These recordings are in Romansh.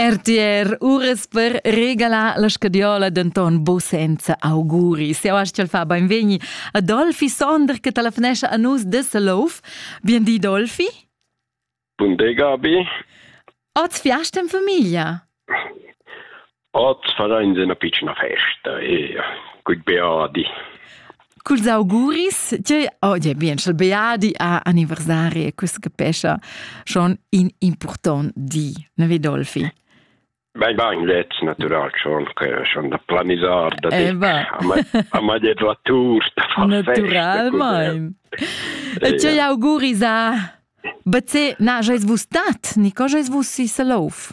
RTR Ures per regalar la scadiola denton bo senza auguri. Se astgel fa beinvegni a Dolfi Sonder che telefonescha a nus de Selouf. Bien di Dolfi. Bun dega abi. Oz fiast in famiglia. Oz fadains üna pitschna festa e cul Beadi. Culs auguris, tgei oggi bien il Beadi ha anniversari e quest che pescha schon in important di, ne Vidolfi? Beh, va in lez natural schon che schon da planisar da eh, a ma det la tour da far naturalmente e tgei auguris a Bce na, jais vus stat, ni co jais vus si Salouf?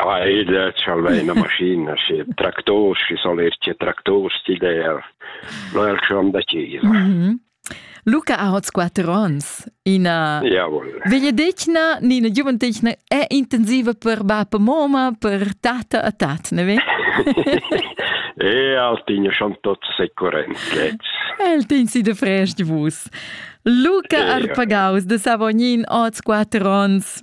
Ah, ed tschalvei ina maschina, schi tractors, schi sol ir tge tractors d'idea. Lo è il schon da chisa. Mm -hmm. Luca ha hoz quatter ons. Ina Jawohl. vegliadetgna ni ina giuventecna è intensiva per bab e moma, per tata e tat, ne ve? e al tigno schon tot securent El tin si de fresh di vus. Luca eh, Arpagaus de Savognin, hoz quatter ons.